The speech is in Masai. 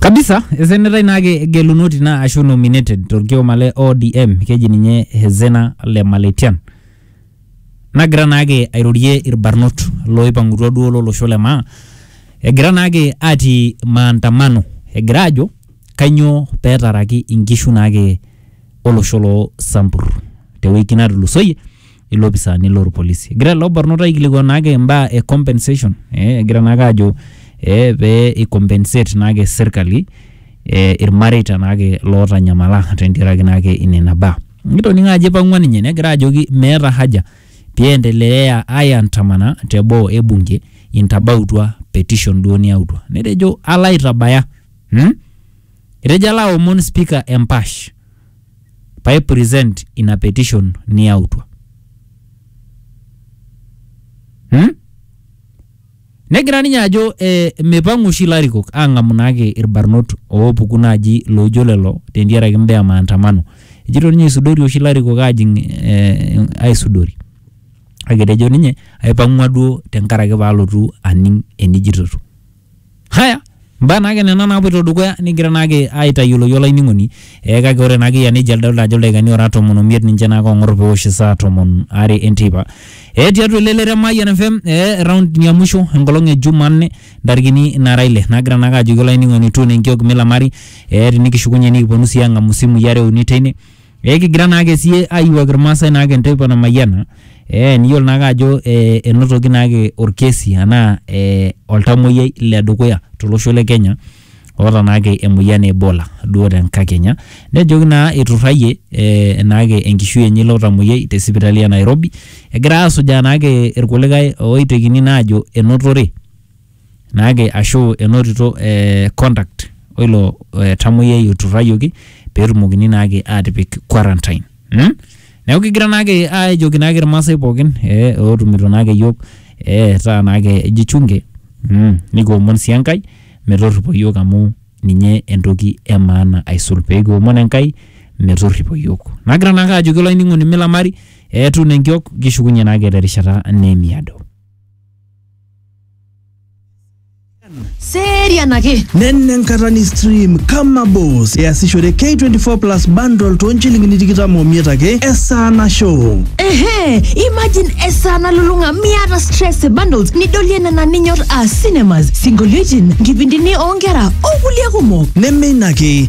kabisa esenetai naake gelunoti naa ashu nominated torkioma le ODM keji ninye Hezena le Maletian nagira naake airorie irbarnot loipang'utua duo lolosho le maa egira naake atii maandamano egira ajo kanyoo petaraki inkishu naake olosho loo Sambur tewiki natulusoyie ilopisaani lorpolisi. Egira ilo barnot aikilikuan naake imbaa e compensation eh, egira naake ajo eh, pee i compensate naake serkali eh, irmareita naake lootanyamala tentiaraki naake inena baa. Nikitoning'o ajo ipang'ua ninye negira ajoki meeta haja piendeleaya aiandamana te boo e bunge intabautua petition duo niyautua. Netejo alo aitabaya hmm? Etejo alo aomon spika empash. paa i present ina petition niyautua hmm? negira ninye ajo eh, mipang'u oshi ilarikok ang'amu naake irbarnot oopuku naaji loojo lelo tentiaraki imbaa e maandamano ejito ninye isudori oshi ilarikok aajing eh, aisudori kake etejo ninye aipang'ua duo tenkaraki paalotu aning enijitoto Haya, mbaa naake nena naapuoito dukuya nikigira naake aitayioloki olainining'oni eh, kake ore naake eyia nejia adolita ajo ildaikani oora tomon omiet ninche naake oong'or pewosh isaa tomon are enteipa eh, tiatua elelero e Mayian FM eh, eraundi ya musho enkolong e Jumanne ntarikini naara ile nagira naake ajoki olainining'oni tuuno enkiok milamari eh, tinikishukunye nikiponu sii aang'amu isimui are uni teine Eh, kigira naake sie ayiwuak irmaasai naake enteipa namayiana eh, niyiolo naake ajo eh, enotoki naake orkesi anaa eh, oltamoyiai le dukuya tolosho le Kenya oota naake emoyian e Ebola duo tenkakenya nejoki naa eiturrayie eh, naake enkishui enye ilo tamoyiai te sipitali e Nairobi egira asujaa naake irkulikae oitekini naa ajo enotore naake ashu enotito eh, contact oilo eh, tamoyiai oturrayioki peetumokini naake aatipik quarantine mm? neeku kigira naake aajoki naake irmaasai pookin eh, ootumito naake iyiok eh, taa naake jichunge mm, nikiomon sii enkai metorripo iyiok amu ninye entoki e maana aisul peekiomon enkai metorripo iyiok nagira naake ajoki olainining'oni milamari eetu nenkiok kishukunye naake terishata neemiado serian ake nenne enkata ni stream kama boss easishore k24 plus bundle too nchilingini tikitam omiet ake esaa nashow ehe imagine esaa nalulung'a miata stress e bundles nidolie nena ninyor aa cinemas sinkolioitin nkipindini oonkera okulie kumok neme ina ake